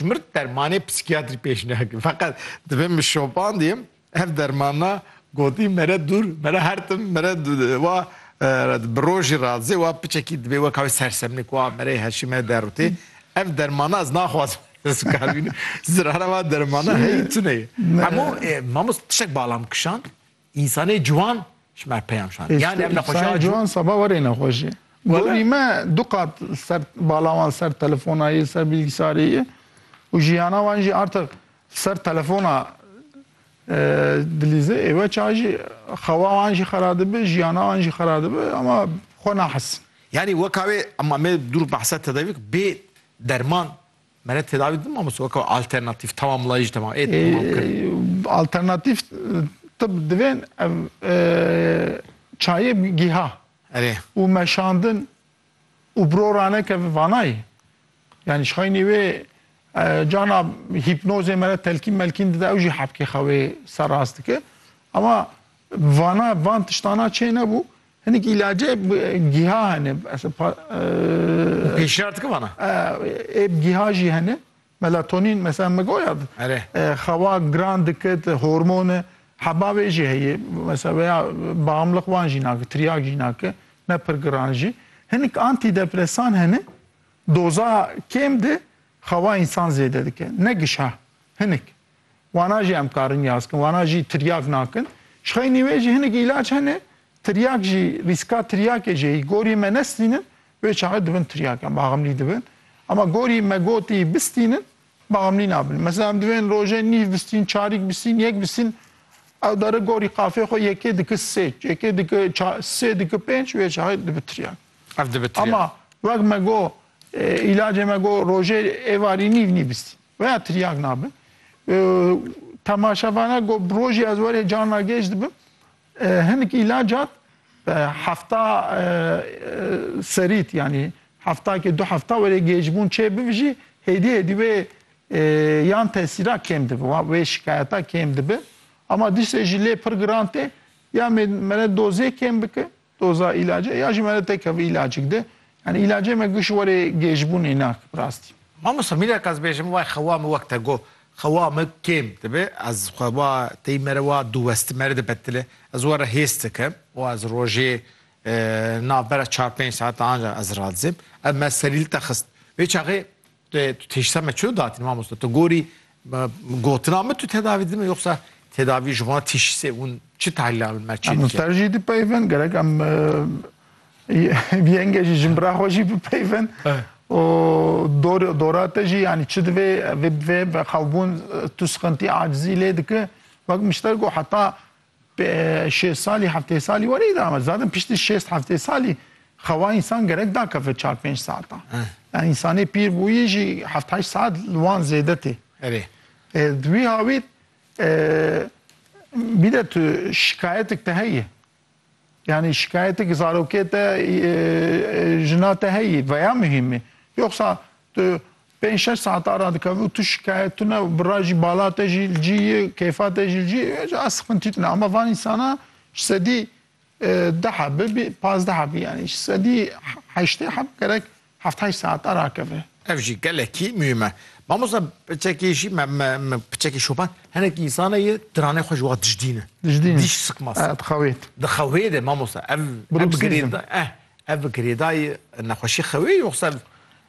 Mir dermanê psîkiyatrî pêş neke. Feqet divê min şopandîm ev dermana gotî mere dûr, mere hertim, mere wa bi rojî ra zê wa piçekî divê weka wê sersemnêk wa mereyê heşî me derûtê. Ev dermana ez naxwazim ez bikar bînim. Zirara wa dermana heyî tune ye. Hemû, e, mamost tiştek bala min kişand. Însanê ciwan ji me peyam şand. Yan em nexweşiya Însanê ciwan seba werê nexweşê. Gorî me du qat ser bala wan ser telefonayê, ser bilgisarê ye û jiyana wan jî artiq ser telefona dilîze ê weça jî xewa wan jî xera dibe, jiyana wan jî xera dibe ama xwe nahesin. Yanî weka wê ema me dûr behsa tedavî bê derman Mere tedavi din mamoste weka alternatif tamamlayıcı tamam. E, tamam kır. Alternatif tıp divên ev e, çayê giha. Erê. Û meşandin û brorane ke vanayê. Yani şaynê wê cana hipnozê mere telkîn melkîn dide ew jî hepkê xewê ser rast dike. Ama vana van tiştana çê nebû Hinek îlacê gîha hene. Û pêşniyar dikim ana? Ê bi gîha jî hene. Melatonîn mesela me goya xewa giran dikit, hormon e. Heba vê jî heye. Mesela veya bamliq wan jî nake, tiryak jî nake. Ne pir giran jî. Hinek antîdepresan hene, doza kêm de xewa însan zêde dike. Ne gişa, hinek. Wana jî em karin yaz kin, wana jî tiryak nakin. Ji xeynî wê jî hinek îlac hene, tiryak jî rîska tiryakê jê yî. Gorî me nestînin, wê çaxê dibin tiryak em axemlî dibin. Ema gorî me gotî bistînin, baxemlî nabin. Mesela em divên rojê nîv bistîn, çarîk bistîn, yek bistîn, ew dere gorî qafê xwe yekê diki sê, yekê diki ça, sê diki pênc, wê çaxê dibi tiryak. Ev dibi tiryak. Ema wek me got îlacê me got rojê êvarî nîv nîbistîn. Weya tiryak nabe. Temaşevana got bi rojê ez werê carna gêj dibim. Hinik îlacat hefta serît yanî heftakê du hefta werê gêjbûn çê bivijî hêdî hêdî wê yan tesîra kêm dibe, wê şikayeta kêm dibe. Ama diştê jî lê pir giran tê ya mêmere dozê kêm bike Doza îlacê ya jî me re teke vî îlacik di. Yanî îlacê me giş werê gêjbûnê nake bi rastî. Mamosta mîneke ez bêjim wayê xewa min wek te got xewa min kêm dibe ez xewa tey me re wa diweste me re dibetile ez we re hês dikim û ez rojê navbera çar pênc saetan ancak ez radizim ev me serîlta xist vê çaxê Lê tu têşsa me çiyo datîn mamosta? Tu gorî gotina min tu tedavî didin yoxsa tedavî ji wan têşîsê hûn çi tahlîla min me çê dikin? Ser jî dipeyvin gerek em yenge jî jin bira xwe jî bipeyvin û dora te jî yanî çi divê vê bivê xelbûn tu sixintî acizî lê dike wek mişter ku heta Şêst salî, heftê salî were îdame di. Zaten piştî şêst heftê salî xewa însan gerek dakeve çar pênc saetan. Yani însanê pîr bûyî jî heft heşt saet li wan zêde tê. Erê. Di wî hawîr bir de tu şikayetik te heye. Yani şikayetik zarokê te jina te heye veya mühîmî. Yoksa tu Pênc şeş saetan radikeve û tu şikayet tune û bira jî bala te jî li cî ye, keyfa te jî li cî ye, ez sixintî tune. Ama van însana ji sedî deh e bibî pazdeh e bibî yanî ji sedî heştê heb gerek heft heşt saetan rakeve. Ev jî gelekî muhîm e. Mamosta piçekî jî me me piçekî şoban hinek însan heye diranê xwe ji wan dijdîne. Dijdîne. Dîş siqmas. E dixewê. Dixewê de mamosta ev ev girêda eh ev girêdayê nexweşî xewê yoxsa